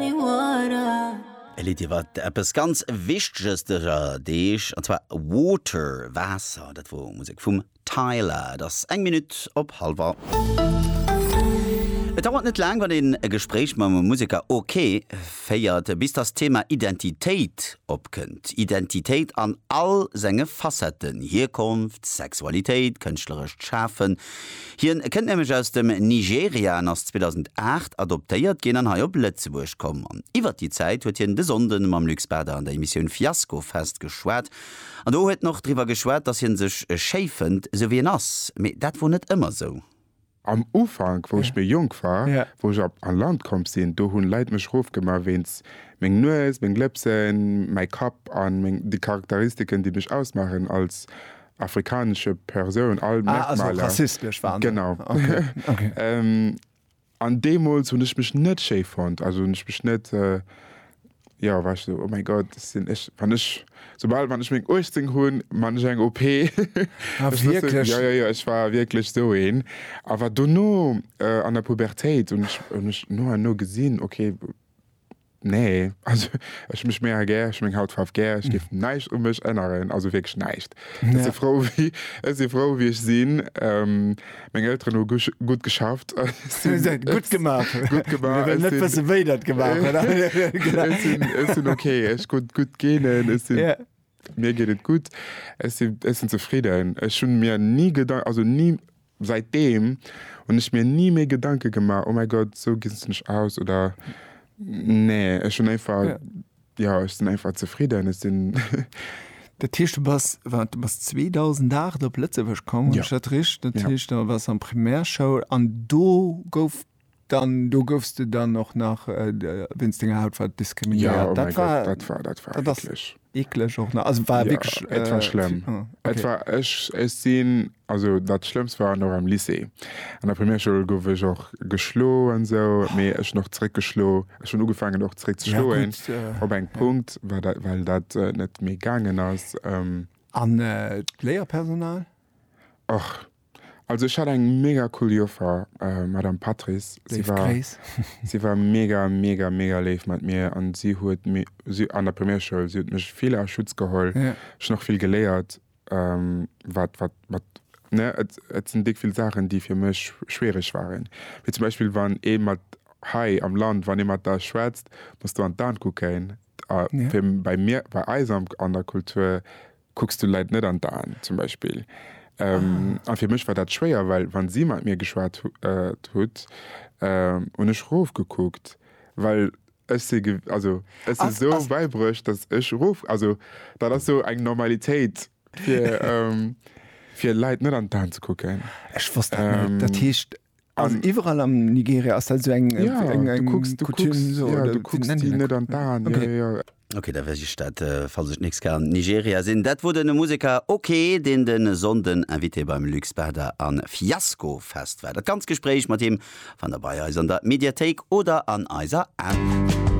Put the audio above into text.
E Lidd iwwer eppes ganz Wichteges dëser Deeg, an zwar Water, Waasser. Dat wor Musek vum Tyla. Et ass eng Minutt op halwer. Et dauert net laang, wann een e Gespréich mam Museker OK. féiert, bis dass d'Thema Identitéit opkënnt. Identitéit an all senge Facetten, Hierkonft, Sexualitéit, kënschtlerescht Schafen. Hien kënnt nämlech aus dem Nigeria an ass 2008 adoptéiert ginn an hei op Lëtzebuerg komm. An iwwert déi Zäit huet hien de Sonnden mam Luc Spada an der Emissioun Fiasko Fest geschwat. An do huet en och driwwer geschwat, dass hien sech schéi fënnt, sou wéi en ass. Mee dat wor net ëmmer sou. Am Ufank, wou ech méi jonk war, wou ech op an Land komm sinn, do hunn Leit mech roof gemaach wéinst meng Nues, meng Lëpsen, mäi Kapp an meng déi Charakteristiken, déi mech ausmaachen als afrikanesche Persoun all ah, Merkmaler. rassistesch waren. Genau. Okay. Okay. ähm, an demols hun ech mech net sche fand, also hun ech mech net äh, ja war so, oh mein Gott sind ich wann ich sobald wann ich mein 18 hun man ich eng OP ah, ich wirklich? Wusste, ja, ja, ja, ich war wirklich so een aber du no äh, an der Pubertät und ich, und ich no no gesinn okay Nee, also ech mech mega gär, ech hu meng Hautfaarf gär, ech géif näischt u mech änneren, also wierklech näischt. Ech si frou, wéi ech si frou, wéi ech sinn. Meng Elteren hu gutt geschafft. Gutt gemaach. Gutt gemaach. Mir wëllen net wëssen, wéi der et gemaach hutt. Ech sinn ok, ech hu gutt Genen, ech sinn, mir geet et gutt, ech sinn zefridden. Ech hu mir ni Gedanken, also ni, Säitdeem hunn ech mir ni méi Gedanke gemaach, oh mäi Gott, esou ginn se mech aus oder nee. Ech hunn einfach, jo, ech sinn einfach zefridden. Ech sinn. Dat heescht, du bass, waart, du bass 2008 op Lëtzebuerg komm, hu ech dat richt? Dat heescht, da waars du an Primärschoul an do gouf Dann do goufs de dann och nach wéinst denger Hautfaarf diskriminéiert? Jo, oh mäi Gott, dat war, dat war eeklech. Eeklech och nach, also war wierklech. Jo, et war schlëmm. Et war, ech, ech sinn, also dat Schlëmmst war nach am Lycée. An der Primärschoul gouf ech och geschlo an esou, mee ech hunn och zeréck geschlo. Ech hunn ugefaangen och zeréck ze schloen op engem Punkt, well dat, well dat net méi gaangen ass. An d'Léierpersonal? Och. Also ech hat eng mega cool Joffer, Madame Patrice. Si war, si war mega, mega, mega léif mat mir an si huet mi, si, an der Primärschoul, si huet mech vill a Schutz geholl. Yeah. Ech hunn och vill geléiert, wat, wat, wat, ne, et, et sinn déck vill Saachen, déi fir mech schwiereg waren. Wéi zum Beispill, wann ee mat, hei am Land, wann ee mat der schwätzt, muss de an d'An kucken. A yeah. fir, bei mir, bei eis am, an der Kultur, Kucks du Leit net an d'Aen, zum Beispill. A fir mech war dat schwéier, well wa si mat mir geschwat hutt, hunn ech rofgekuckt, well ech si, also ech si sou bäibruecht, datt ech rof, also dat ass sou eng Normalitéit fir Leit net an d'Aen ze kucken. Ech wosst dat net. Dat heescht, Also an, iwwerall am Nigeria ass dat so eng ja, eng, eng du kucks, du Coutume, kucks, so, ja, du kucks die net an d'Aan. Okay. Ja, ja, ja. Ok, da weess ech dat, äh, falls ech d'nächst Kéier am Nigeria sinn. Dat wor den Museker OK, deen de Sonnden Invité beim Luc Sperda a Fiasco Fest war. Dat ganz Gespréich mat him fannt der bei eis an der Mediathéik oder an eiser App.